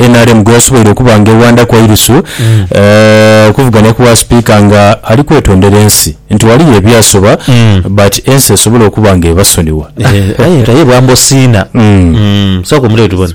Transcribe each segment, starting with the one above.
nrm gweyasoboire okuba nga ewandaku eirisu okuvuganya ku bwa sipiika nga ali kwetondera ensi nti ghaliyo ebyasoba but ensi esobole okuba nga ebasonigha. Aye nga ye bwamba osiina. Sooka omuleete tubone.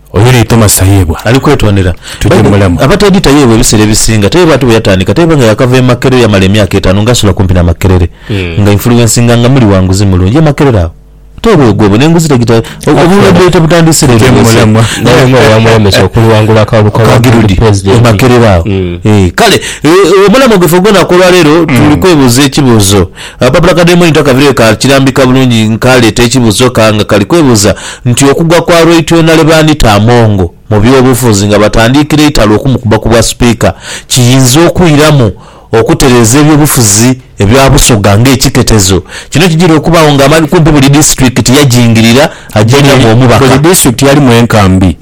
Oyo ni Thomas Tayebwa ali kwetondera tuje mulamu. Abateedi Tayebwa ebiseera ebisinga Tayebwa ati bwe yatandika Tayebwa nga yaakava e Makerere yamala emyaka etaanu nga asula kumpi na Makerere nga influencinga nga muli wa nguzi mulungi e Makerere awo. Tayebwa oyo gwebona enguzi tagita obulwadde tebutandiise leero naye nga owamulemesa okuliwangula akalulu ka Ward e Makerere awo. Kale omulamo gwaife ogw'olunaku olwaleero tuli kwebuuza ekibuuzo Akapapula ka Daimoni takabire ka kirambika bulungi nkaleeta ekibuzo ka nga kali kwebuza nti okugwa kwa Rweityona lwe baanita Amongo mu byobufuzi nga batandiikira eitalo okumukuba ku bwa Sipiika kiyinza okwiramu okutereeza ebyobufuzi ebya Busoga nga ekiketezo kino kijira okubagho nga amani kumpi buli disitulikiti yajingirira ajengamu omubaka. Buli disitulikiti yalimu enkambi,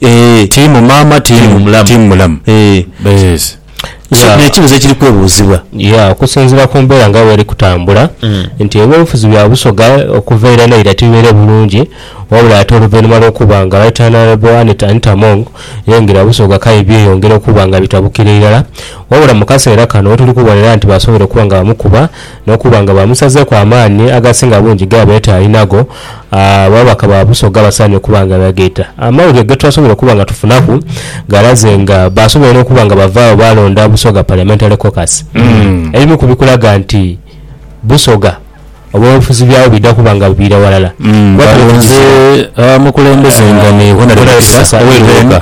tiimu maama, tiimu mulamu. So Yeah. n'ekibuuzo ekiri kwebuuzibwa. Yeah, okusinziira ku mbeera nga bweri kutambula nti eby'obufuzi bya Busoga okuva eira n'eira tibibaire bulungi wabula ate oluvainhuma lw'okuba nga Right Honourable Annet Anita Among yaingira Busoga k'aye byeyongera okuba nga bitabukira irala wabula mu kaseera kano wetuli kubonera nti basoboire okuba nga bamukuba N'okuba nga baamusazeeku amaani agasinga bungi ge abaire taalinagho, ababaka ba Busoga basaanire okuba nga beegaita. Amawulire ge twasobola okuba nga tufunaku galaze nga baasobola n'okuba nga bava agho baalonda Busoga Parliamentary Caucus. Ebimu ku bikulaga nti Busoga obwobufuzi byabwo bidha kuba nga buviira ghalala, kuba tuli mu kiseera Balonze abamukulembeze nga ni Hon. Peter Oweruuka.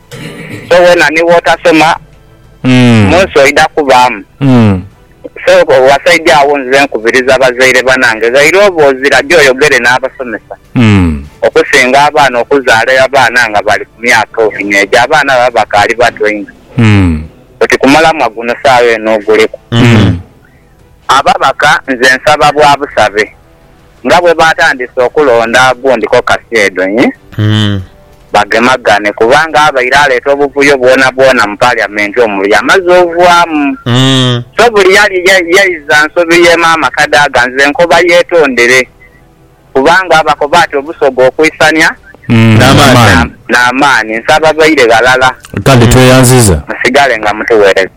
So wena ni wotasoma munsi oidha kubaamu. So wasaidha agho nze nkubiriza bazaire banange ghaire oba ozira gyo oyogere n'abasomesa okusinga abaana okuzaala abaana nga bali ku myaka eno egyo abaana baba bakaali bato inho oti ku mulamwa guno saagha eno oguliku. Ababaka nze nsaba bwa busabe. nga bwe baatandise okulonda gundi kokasi edho nhi bagemagane kubanga abaire aleeta obuvuyo bwonabwona mu Paliyamenti omwo yamaze ovwamu. So buli yali yaiza nsobi ye maama Kadaga nze nkoba yeetondere kubanga abakoba ati obusoga okuisania n'amaani. Nsaba baire ghalala musigale nga mutuweereza.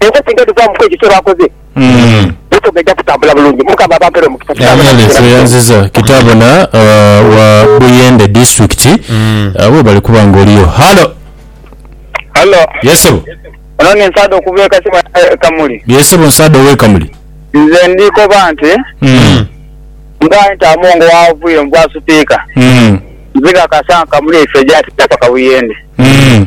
Ensi singa edhuvaamuku ekyo kye baakoze, Busoga eja kutambula bulungi. Mukama abampere omukisa. Kitaabo na Alex Buyende. Oyanziza kitaabo na uh, wa Buyende district uh, webale kuba nga oliyo. Halo. Hallo, Yes sebo. ono ni Nsaado okuva e Kasimu e Kamuli. Yes sebo Nsaado owe Kamuli. Nze ndi koba nti Mm. nga nti Amongo wavuye mu bwa supiika, Mm. nziga kasa Kamuli eifo egyatita paka Buyende. Mm.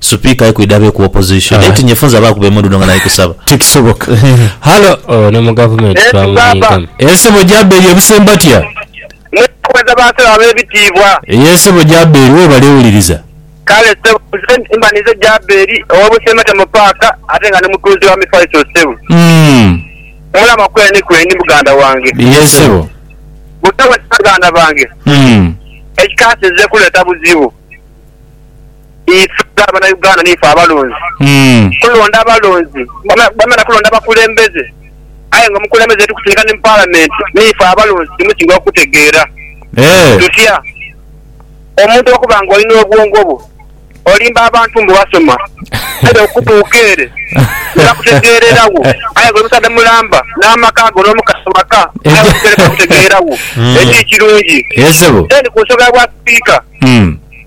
Supika ye kwidha be ku opposition naye tinye funza ba kuba emundu no nga nali kusaba. Tikisoboka. Halo. Oyo ne mu gavumenti twamunyiigamu. Eeh sebo Jaberi ebuse mbatya. Mwebale ba sebo abebitiibwa. Eeh sebo Jaberi webale wuliriza. Kale sebo nze mba ninze Jaberi owe Busembatya mu paaka ate nga ni mutunzi wa mifaliso sebo. Umm. Omulama kweni kweni muganda wange. Ye sebo. Busawo ki baganda bange. Umm. Ekikaasi nze kuleta buzibu. Ife nga abana Uganda niife abalonzi kulonda abalonzi bamala kulonda bakulembeze aye nga omukulembeze yetukusindika ni mu parliament niife abalonzi timusinga okutegeera tutya omuntu okuba nga olina obwongo bwo olimba abantu mbu basoma aye okutuuka ere tibakutegeerera wo aye nga oli musaadha mulamba namaka go nomukazi waka aye okutuuka ere tibakutegeera wo ekiri ekirungi then ku nsonga ya bwa sipiika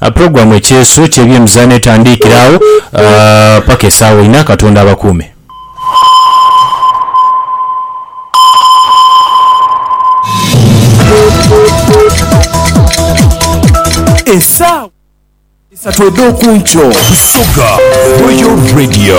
A Pulogulaamu Ekyeeso ky'ebyemizaano etandiikira agho paka esaawa inha. Katonda abakuume. Esaawa isatu edh'okunkyo. Busoga Royal Radio.